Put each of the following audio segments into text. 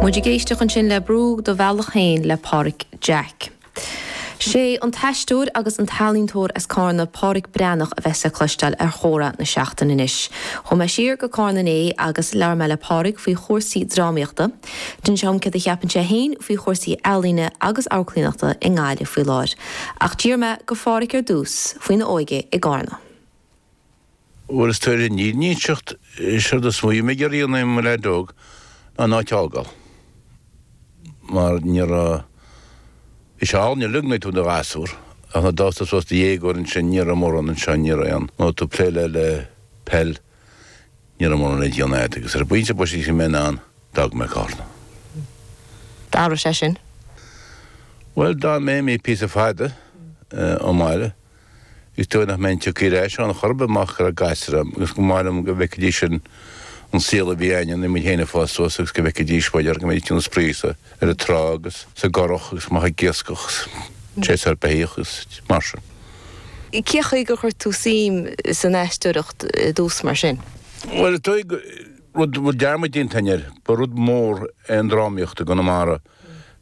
Muid ag éisteach ansin le Brú do Bhealach Féin le Páraic Jack. Sé an t-aisteoir agus an t-ealaíontóir as Cárna, Páraic Breathnach a bheas le cloisteáil ar Chomhrá na Seachtaine anois. Chuaigh mé siar go Cárna inné agus labhair mé le Páraic faoi chúrsaí drámaíochta. D'inis sé dhom céard a cheapann sé féin faoi chúrsaí ealaíne agus amharclaíonachta i nGaillimh faoi láthair. Ach d'iarr mé go Pháraic ar dtús faoina óige i gCárna. Bhuel, leis an fhírinne a inseacht, séard is mó a bhí mé ag iarraidh a dhéanamh i mo leaid óg ná an áit a fhágáil. Mar níor, bhí sé an-idyllic nuair a bhí tú i do ghasúr, ach nuair a d'fhás tú suas i do dhéagóir ansin, ní raibh mórán anseo, ní raibh aon, nó tú ag plé le, le peil, ní raibh mórán le déanamh agat. Agus ar an bpointe boise a bhí mé in ann d'fhág mé Carna. D'fhanadh sé sin? Bhuel, d'fhan mé, mé píosa fada ón mbaile. Is dóigh nach mbeinn tagtha ar ais ann chor ar bith marach go raibh gasúir a'm agus go mb'áil liom go bhfeicfidís an saol a bhí againn nuair a bhí muid féin ag fás suas agus go bhfeicfidís b'fhéidir go mbeidís in ann spraoi sa trá agus sa gcurach agus amach ag iascach agus séasúr beithíoch agus mar sin. Cé chaoi gur chuir tú suim san aisteoireacht i dtús mar sin? Bhuel is dóigh rud a bhfuil dearmad déanta againn air, ba rud mór é an drámaíocht i gConamara,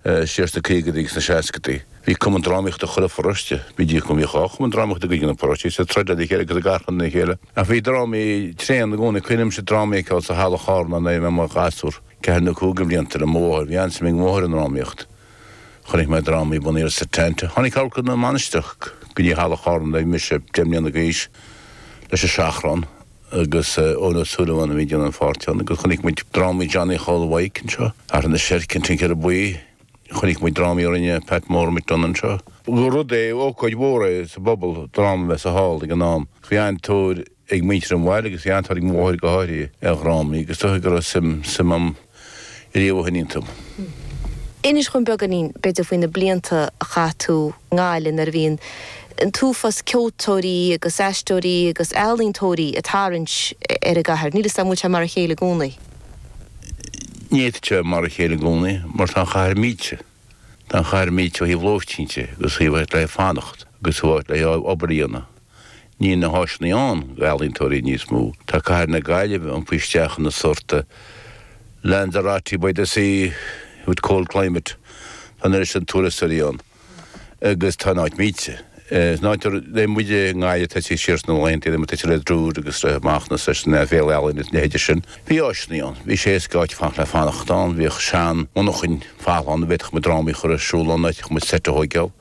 siar sna caogadaí agus na seascadaí. Bhí cumann drámaíochta i chuile pharóiste, b'fhéidir go mbíodh dhá chumann drámaíochta i gcuid de na paróistí, is ag troid le chéile agus ag achrann le chéile. Ach bhí drámaí tréan i gcónaí. Cuimhnímse drámaí a fheiceáil sa halla Chárna nuair a bhí mé i mo ghasúr, ceathair nó cúig de bhlianta, le mo mháthair. Bhí an-suim ag mo mháthair i ndrámaíocht. Chonaic mé dráma bunaithe ar Setanta. Tháinig amharclann na Mainistreach go dtí halla Chárna nuair a bhí mise deich mbliana d'aois, leis An Seachrán, agus Eoin Ó Súilleabháin a bhí ag déanamh an pháirt ann agus chonaic muid drámaí Johnny Chóil Mhaidhc anseo, Ortha na Seirce, An Tincéara Buí, chonaic muid drámaí a rinne Pat Mór Mac Donncha anseo. Ba rud é, ócáid mhór é sa bpobal dráma a bheith sa hall ag an am. Bhí an-tóir ag muintir an bhaile agus bhí an-tóir ag mo mháthair go háirithe ar dhrámaí agus is dóigh go raibh suim, suim a'm. riamh ó shin iontu. Inis dhom beagáinín, b'fhéidir, faoi na blianta a chaith tú i nGaillimh nuair a bhí an t-uafás ceoltóirí agus aisteoirí agus ealaíontóirí ag tarraingt ar an gcathair. Níl 'fhios a'm, an bhfuil sé mar a chéile i gcónaí? Ní fhéadfadh sé a bheith mar a chéile i gcónaí mar tá an chathair millte. Tá an chathair millte ó thaobh lóistín de agus ó thaobh áit le fanacht agus ó thaobh áit le obair a dhéanamh. Níl na háiseanna ann d'ealaíontóirí níos mó. Tá cathair na Gaillimhe iompaithe isteach ina sórt Lanzarote by the sea with cold climate. Tá an oiread sin turasóirí ann agus tá an áit millte. Is nuair a tharla muide i nGaillimh, tá's a'd, siar sna laethanta a raibh muid Tuitim le Druid agus roimh Mhacnas leis an bhféile ealaíne agus na leithéidí sin. Bhí áiseannaí ann, bhí sé éasca áiteacha le fanacht ann, bhíodh sean monarchain folamh ann a bhféadfadh muid drámaí a chur ar siúl ann, d'fhéadfadh muid seit a thóigeáil.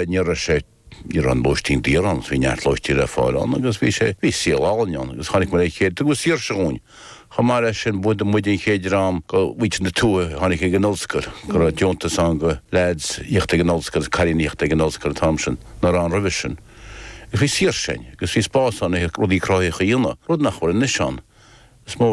Ní raibh sé, ní raibh an lóistín daor ann, bhí neart lóistín le fáil ann agus bhí sé, bhí saol álainn ann agus tháinig muid le chéile, tugadh saoirse dhúinn. Chomh maith leis sin, ba iad muid an chéad dream de mhuintir na tuaithe a tháinig chuig an ollscoil, go raibh deontas ann do leaids a thíocht ag an ollscoil agus cailíní a thíocht ag an ollscoil an t-am sin nach raibh ann roimhe sin. Agus bhí saoirse ann agus bhí spás ann le rudaí cruthaitheacha a dhéanamh, rud nach bhfuil anois ann. Is mó.